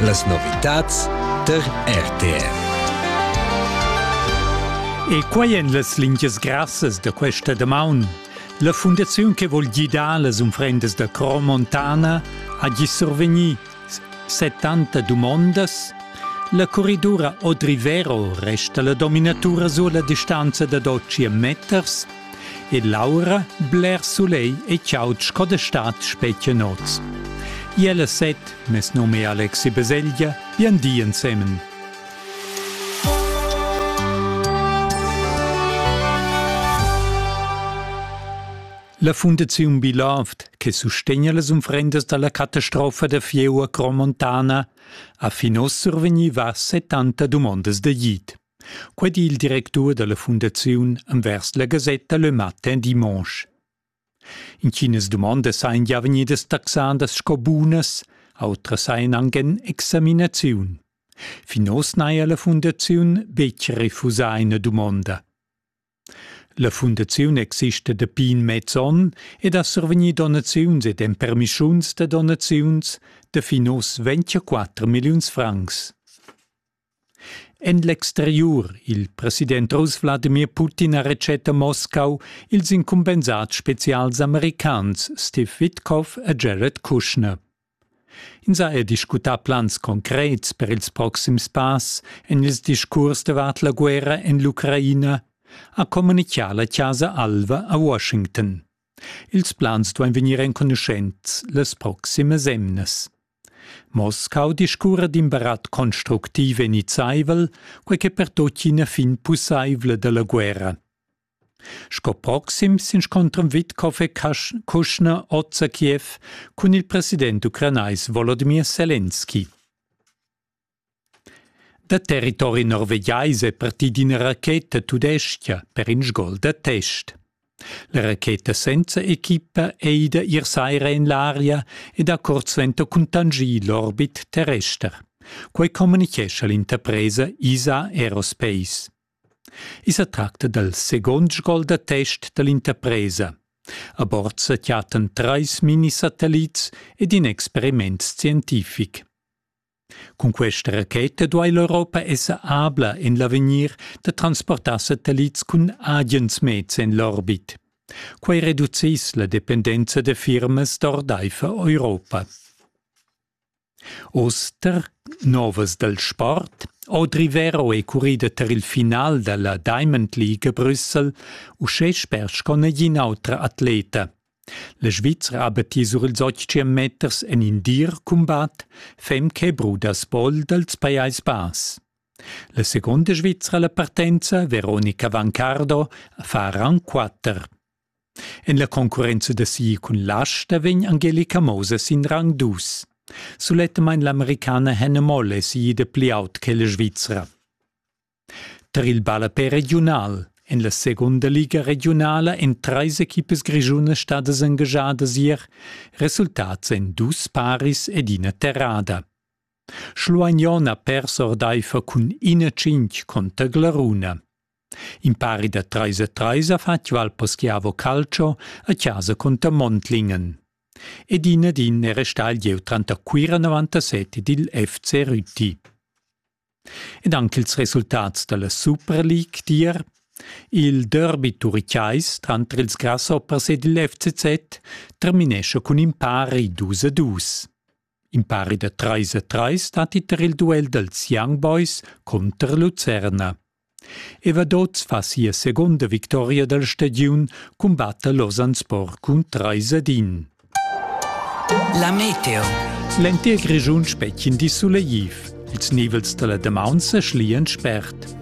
Las novitads tar RTR. E quai èn las lingias grassas da questa damaun. La fundaziun che vogl gidar las unfrendas da Cro Montana ha gi survegni 70 dumondas. La corridura Odrivero resta la dominatura sur la distanza da 12 meters ed l'aura bler sulegl e chaud sco da stad spetga noz. Iel e set, mes num è Alexi Beseglia, bien di ensemen. La Fundaziun Biloft, che sustegna las unfrendas dalla catastrofa da Fieu a Cromontana, ha fin ossa survegniva 70 dumondas da git. Quei di il directur dalla fundaziun envers la gasetta Le Matin Dimanche. Inchinas dumondas ein gia vegnidas taxadas sco bunas, outras ein anc en examinaziun. Fin oz n'haja la fundaziun betg refusà ina dumonda. La fundaziun exista dapi in mez onn ed ha survegni donaziuns ed empermischuns da donaziuns da fin oz ventiquatter milliuns francs. En l'exteriur, il president russ Wladimir Putin ha retschet a Moscau ils incumbensats spezials americans Steve Witkoff e Jared Kushner. Ins ha er discutà plans concrets per ils proxims pass en ils discurs davart la guerra en l'Ucraina, ha communitgà la Chasa Alva a Washington. Ils plans duain vegnir enconuschents las proximas emnas. Moscau discurra d'in barat constructiv e nizzaivel, quai che pertocchina fin pussaivla da la guerra. Sco proxim s'inscontran Witkow e Kuschner oz a Kiew cun il president ucranais Wolodimir Selenski. Da territori norvegiais è partì d'ina racheta tudestga per in sgol da test. La racheta senza equipa è ida ier saira en l'aria ed ha curt suenter cuntanschì l'orbit terrester. Quai communitgescha l'interpresa ISA Aerospace. I sa tracta dal segond sgol da test da l'interpresa. A bord sa chattan trais minisatellits ed in experiment scientific. Cun questa racheta duai l'Europa esser abla en l'avegnir da transportar satellits cun agens meds en l'orbit. Quai reduciss la dependenza da firmas d'ordaifer Europa. Oster, novas dal sport, Audri Vero è currida tar il final da la Diamond League a Brüssel, uschè sper sco negin autra atleta. La Svizra ha battì sur ils 800 meters en in dir cumbat, fem che bruda spol dals Pajais Bass. La seconda Svizra la partenza, Veronica Vancardo, fa rang 4. En la concurrenza da sia cun l'asta vegn Angelica Moses in rang dus. Sulettamain l'Americana Hannah Moll è siida pli aut che la Svizra. Tar il ballapè regiunal En la segunda liga regiunala en treis equipas grischunas stadas engagiadas ier, resultats en dus paris ed ina terrada. Schluagnon ha pers ordaifer cun ina cinc conter Glaruna. Impari da treis a treis ha fatg Valpo Schiavo calcio a chasa cunter Montlingen. Ed in ed in era stai jeu tranter Cuira 97 ed il FC Rüti. Ed anche ils resultats dalla Super League dir il derby turichais tranter ils grasshoppers ed il FCZ terminesce cun in pari dus a dus. In pari da treis e treis stat iter il duel dels Young Boys conter Lucerna. Evadoz fa sia seconda victoria dal stadiun cumbatta Losanspor cun treis ad in. La meteo. L'entir Grischun spechin di suleiv. Ils nivels della Demaunza schlian spert.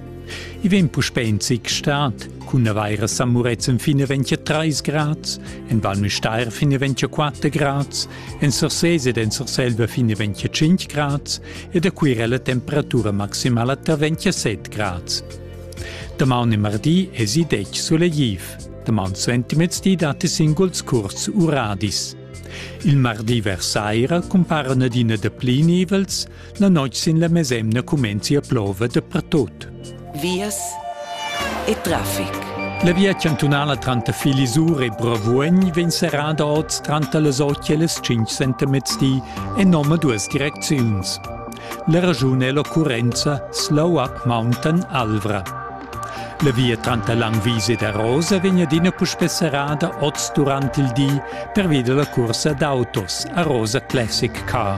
I vem puspè in zic stat, cun avaira San Muretzen fine 23 grads, en Val Müstair fine 24 grads, En Sursés ed en Surselva fin a 25 grads e da Cuira la temperatura maximala tar 27 grads. Damaun e mardi esi detg sulegliv. Damaun suentimez di datti singuls curts uradis. Il mardi vers saira cumparan adina da pli nivels, La noit sin la mesemna cumenzi a plova dapertut. Vias e traffic. La via chantunala tranter Filisur e Bravuogn vegn serrada oz tranter las 8 e las 5 sentemezdi en nome duas direcziuns. La ragione è l'occurrenza Slow Up Mountain Alvra. La via tranter Langwies ed Arosa vegn adina puspè serrada oz durant il di pervia della cursa d'autos Arosa Classic Car.